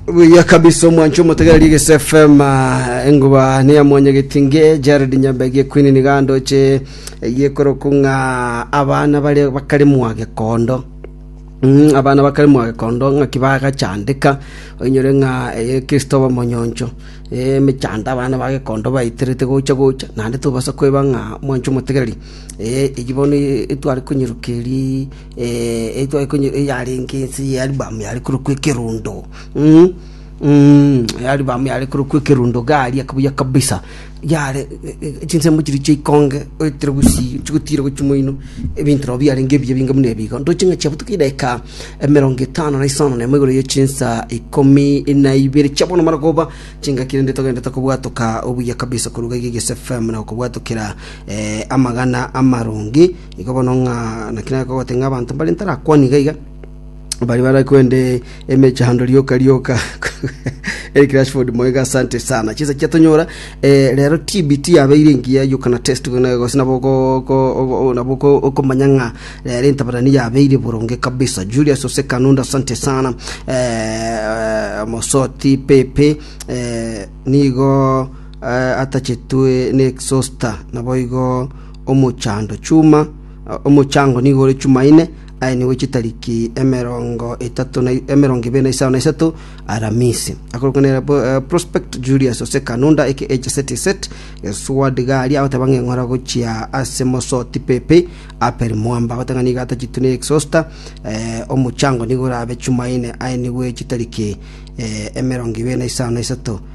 buya kabisa omwancho omotegereri egese fm ah, enguba niya mwanya getinge jared nyambegi ekwini nigandoche egiekoroku ng'a abana bare bakare mwagekondo Mm, abana bakare mwagekondo ng'aki bagachandeka oinyore ng'a eye kristo oba monyoncho Eh, emechando abana bagekondo baiterete gocha gocha naende tobasa kweba ng'a mwancho omotegereri Eh, egi bono eh, tware konyeruka eri yarenge ense y'Alibamu yare korokwa Ekerundo, Alibamu yare korokwa Ekerundo iga aria buya kabisa, yare chinsemo chiria chia ikonge oetire gusii chigotira gochia moino, ebinto nabo biarenge ebiya ebinge buna ebigo. Ndoche ng'a chiabutuka edaika emerongo etano na isano na emo igoro ya chinsa ikomi na ibere chia bono mara koba chingaki rende togenderete kobwatoka obuya kabisa korwa iga iga Egesu FM na gokobwatokera amagana amaronge. Igo bono ng'a naki nagogote ng'a abanto mbare ntarakwana iga iga, baria bare kwende emechando rioka rioka. Eric Rashford moiga asante sana. Chinsa chia tonyora eh, rero TB tiyabeire engiya you can attest to na gose nabo ko- ko- ogo- nabo ko- okomanya ng'a rero entabarani yabeire boronge kabisa. Julius Ose Kanunda asante sana. Eh, Mosoti Pepe eh, nigo eh, atachetwe ne exhauster naboigo omochando chuma, omochango nigo ore chuma ine, aye nigo ore chitariki emerongo etato na emerongo ibere na isano na isato Aramisi. Akorokwa nere Prospect Julius ase Kanunda aka HST set Gesward Garia agoteba ng'a eng'ora gochia ase Mosoti Pepe Apel Mwamba agoteba ng'a nigo atachitwe ne Exhauster omochango nigo orabe chuma ine, aye nigo ore chitariki emerongo ibere na isano na isato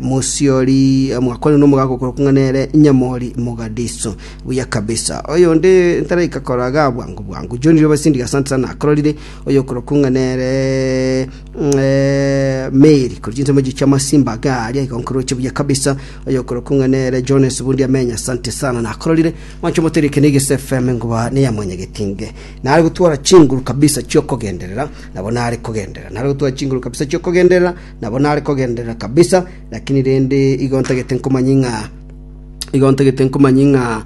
Mosiori mwakwanire nomogaaka okorokwa ng'a nere Nyamori Mogadiso. Buya kabisa. Oyonde ntaraika koraga bwango bwango. John Riobasindi asante sana akororire oyokorokwa ng'a nere eh, Mary kori chinsemo echi chia masimba ake aria igonkoroche buya kabisa oyokorokwa ng'a nere Jones Bundi amenya asante sana nakororire mwancho moterike na Igese FM ngoba ne ya mwanyagetinge nare gotwara chinguru kabisa chiokogenderera nabo nare kogenderera nare gotwara chinguru kabisa chiokogenderera Nabo nare kogenderera kabisa, lakini rende igo ntagete nkomanyie ng'a, igo ntagete nkomanyie ng'a,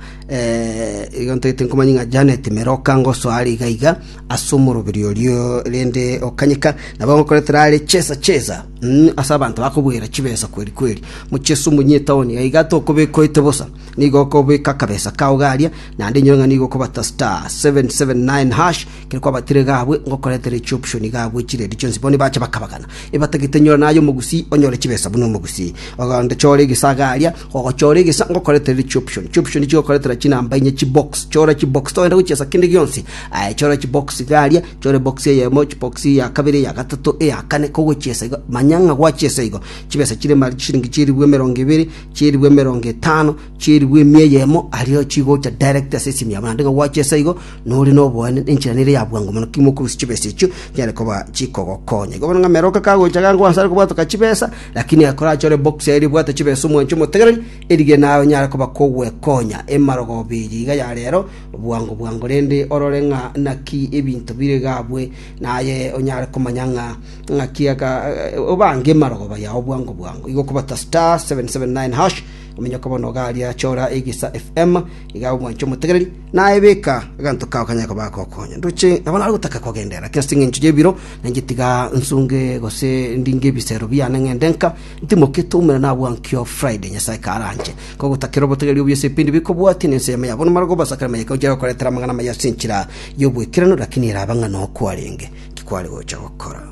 igo ntagete nkomanyie ng'a Janet mere okangosoa are iga iga ase omoroberio oria rende okanyeka, nabo ngokoretera are chesa chesa, mm, ase abanto bakobwera chibesa kweri kweri. Mochie ase omonyie etaoni iga iga tokobeka oete bosa, nigo okobeka akabesa kao garia, naende inyore ng'a nigo okobata star, seven, seven, nine, hash, Ekero kwabatire gabwe ngokoretera echioption gabwe chiredi chionsi, bono nibacha bakabagana, ebatagete nyora naye omogusii onyore chibesa buna omogusii. Ogende chore egesa iga aria, ogochora egesa ngokoretera echioption. Chioption chigokoretera chinamba inye chibox, chora chibox togenda gochia ase kende gionsi. Aye chora chibox iga aria, chora ebox eyemo, chibox ya kabere, eya gatato, eya kane, kogochia ase igo, manya ng'a gwachia ase igo. Chibesa chire mari chisiringi chieribu emerongo ebere, chieribu emerongo etano, Chirigwa emia eyemo aria chigocha direct ase esimia yabo, naende ng'a gwacha ase igo nore noboene, nenchera nere ya bwango mono, timoba okorusia chibesa echio chinyare koba chikogokonya. Igo bono ng'a meroka kagocha iga nkorwa asare kobwatoka chibesa, lakini akorache ore box yaye ribwate chibesa omwancho omotegereri, erige naye onyare koba kogwekonya. Emarogoobe eye iga ya rero, bwango bwango rende orore ng'a naki ebinto bire iga abwe, naye onyare komanya ng'a ng'aki aka obange emarogooba yao bwango bwango. Igo okobata star, seven, seven, nine, hash Ominyoke bono iga aria achora egesa FM, iga omwanche omotegereri, naye beka aganto kao kanyare koba agokonya. Ndoche nabo nare gotaka kogenderera, lakini ase eng'encho y'ebiro nainche tiga nsunge gose ndinge ebisero biane ng'ende nka, ntimokete oumere nabwo ankio Friday Nyasae karanche. Nkogotakera obotegereri obio ase ebipindi bikobwatia na ense yamo ya bono mare kobasa kera mayeka ochia gokoretera amang'ana amaya ase enchera y'obwekeranu, lakini erabe ng'a nokwarenge, ki kware gocha gokora.